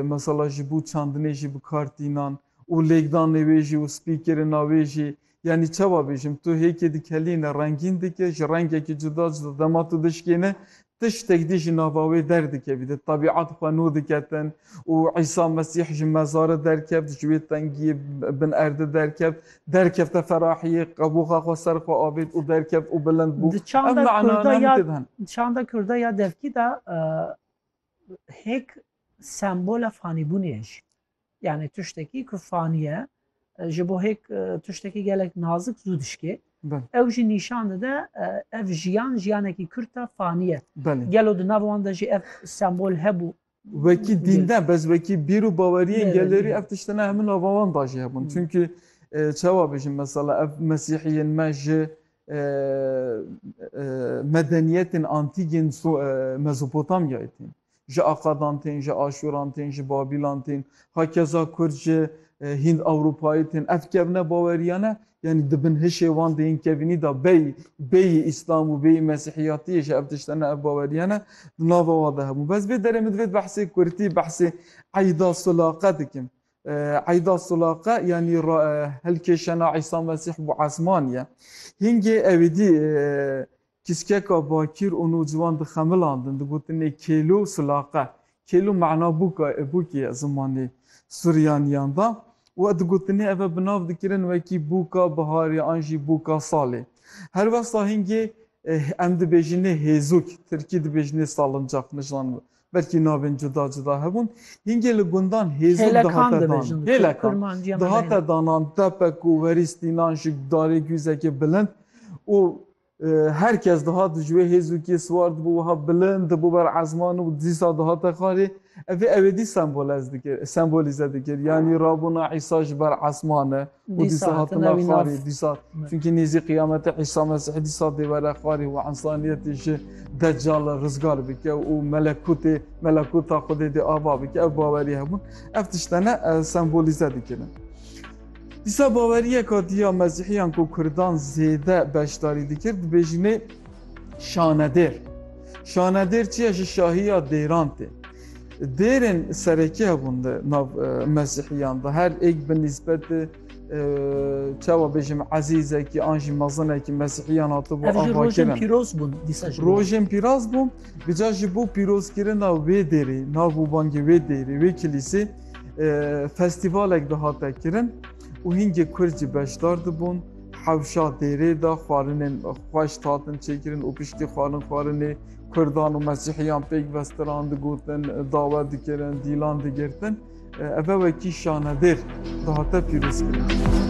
mesela ji bo çandinê jî bi kar tînan û lêkdanê wê jî û spîkirina wê jî yanî çawa bêjim tu hêkê dikelîne rengîn dike ji rengekî cuda cuda dema tu dişkêne tiştek dî ji nava wê derdikevî di tebîat xwe nû diketin û Îsa Mesîh ji mezarê derkevt ji wê tengiyê bin erdê derkevt derkevte ferahiyê qebûxa xwe ser xwe avêt û derkevt û bilind bû Di çanda kurda ya di çanda kurda ya devkî de Hêk sembola fanîbûnê ye jî. Yanî tiştekî ku fanî ye ji bo hêk tiştekî gelek nazik zû dişkê. Ew jî nîşan dide ev jiyan jiyanekî kurt e fanî ye. Gelo di nav wan de jî ev sembol hebû? Wekî dîn ne bes wekî bîr û baweriyên gelerî ev tiştên hemû nava wan de jî hebûn. Çimkî çawa bijîm mesela ev mesîhiyên me ji Medeniyetên antîk yên Mezopotamyayê tên. Ji Akadan tên, ji Aşûran tên, ji Babîlan tên, hakeza Kurd ji Hînd-Ewropayê tên. Ev kevne baweriyane yanî di bin hişê wan de yên kevînî de bêyî bêyî Îslam û bêyî Mesîhiyatiyê jî ev tişt hene, ev baweriyane di nava wan de hebûn. Bes vê derê min divê di behsê kurtî, behsê eyda, silaqe dikim. Eyda Sulaqe yanî helkêşena Îsa Mesîh bi esman ye. Hingê ewêdî kiskeka bakîr û nûciwan dixemilandin, digotinê kêlo sulaqe. Kêlo mana bûk ye zimanê Suryaniyan de û digotinê ev e bi nav dikirin wekî bûka biharê an jî bûka salê. Helwesta hingê em dibêjinê hêzûk, tirkî dibêjinê salıncax, nişan Belkî navên cuda cuda hebûn. Hingê li gundan hêzok dihate dan. Hêlekan dihate danan, tepek û werî stînan ji darê guzekê bilind û her kes dihat ji wê hêzokiyê siwar dibû wiha bilind dibû ber ezman û dîsa dihate xarê. Ev ê ewêdî sembolîze dikir. Yanî rabûna Îsa ji ber esman e. û dîsa hatina wî nav. Dîsa, çunkî nêzî qiyamete Îsa Mesîh dîsa dê were xwarê û ensaniyetê ji Deccalê rizgar bike û melekûtê melekûta Xwedê dê ava bike. Ev bawerî hebûn ev tişte ne sembolîze dikirin. Dîsa baweriyeka dî ya Mesîhiyan ku Kurdan zêde beşdarî dikir dibêjinê şanedêr. Şanedêr çi ye ji şahiya dêran tê. Dêrên serekî hebûn di nav Mesîhiyan de her êk bi nîsbetê çawa bêjim ezîzekî an jî mezinekî Mesîhiyan hatibû avakirin. Rojên pîroz bûn dîsa jî. Rojên pîroz bûn bi ca jî bo pîrozkirina wê dêrê nav û bangê wê dêrê wê kilîsê festîvalek dihate kirin û hîngê Kurd jî beşdar dibûn. Hewşa dêrê de xwarinên xweş hatin çêkirin û piştî xwarin xwarinê Kurdan û Mesîhiyan pêk vestiran, digotin, dawe dikirin, dîlan digirtin. Ev e wekî şanedêr dihate pîrozkirin.